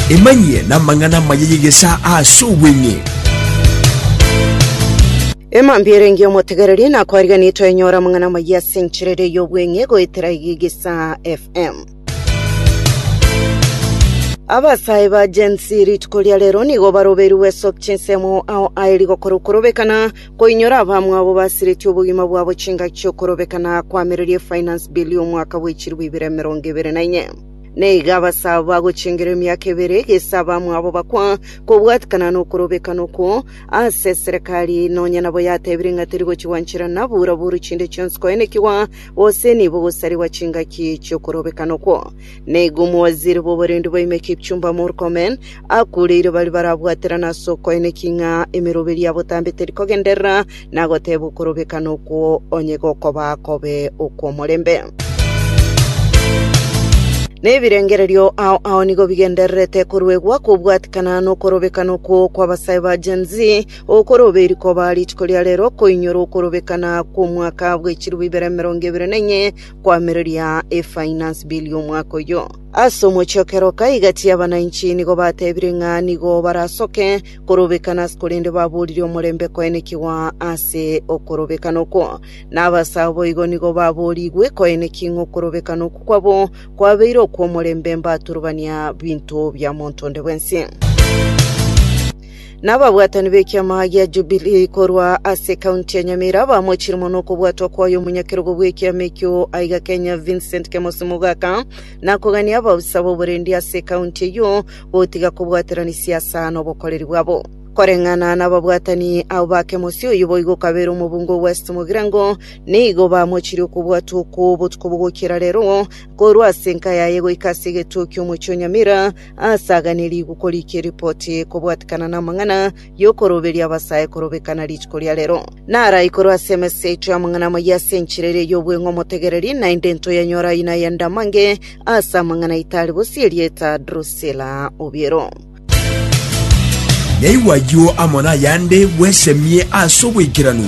Emanyie namang'ana amaya y'egesaa ase obweng'e. Emambia erenge omotegereria nakwariganire toenyora amang'ana amayia ase enchera ere y'obweng'e goetera iga egesaa FM. Abasae ba Gen Z rituko ria rero nigo baroberigwe soki chinsemo ao aye rigokora okorobekana Koinyora abamwabo basiretie obogima bwabo chingaki chi'okorobeka na koamereria eFinance Bill y'omwaka bwe chilifu ibere emerongo ebere na inye. Na iga abase abo bagochengera emiaka ebere, gese abamwabo bakwa, kobwatikana nokorobekana okwo ase eserekari, nonya nabo yatebirie ng'a teri gochigwa nchera na bura buru chinde chionsi koenekigwa, gose nibo gosarigwa chingaki chi'okorobekana okwo. Nigo omowaziri bw'oborendi bwaime Kipchumba Murkomen akureire baria barabwaterane ase okoeneki ng'a emeroberi ya botambe teri kogenderera na goteeba okorobekana okwo onye gokoba kobe okw'omorembe. Na ebirengererio ao ao nigo bigendererete koruegwa kobwatikana nokorobekana okwo kw'abasae ba Gen Z, okoroberi koba rituko ria rero koinyora okorobekana kw'omwaka bw'echirubu ibere emerongo ebere na enye, koamereria efinance bill y'omwaka oyio. Ase omochie o kera o kaigati abananchi nigo batebire ng'a nigo barasoke korobekana, korende baboorire omorembe koenekigwa ase okorobekana okwo. Na abasae boigo nigo baboorigwe koeneki ng'a okorobekana okwo kwabo kwabeire okw'omorembe mbaturubania binto bia monto onde bwensi. Nababwatani b'ekiama gia Jubilii korwa ase ekaunti ya Nyamira bamochire mono okobwatwa kwaye omonyakerogo bw'ekiama ekio aiga Kenya Vincent Kemosi Mogaka na kogania abaofisa b'oborendi ase ekaunti eyio gotiga kobwaterania siasa n'obokoreri bwabo. Koreng'ana nababwatani abo ba Kemosi oyio boigo okabeire omobunge o West Mogirango nigo bamochire okobwatwa okwo botuko bogokiera rero korwa ase enka yaye goika ase egetuo ki'omochie o Nyamira Asaganirigwe korika eripoti kobwatikana namang'ana y'okoroberia abasae korobekana rituko ria rero. Naraikorwe ase emesa yaito y'amang'ana amayia ase enchera eria y'obweng'u omotegereri, naende ntoyanyore ayio nayende amange ase amang'ana aito are bosio erieta Drusila obiero. Naigwe ayio amo nayande bwesemie ase obwaikeranu.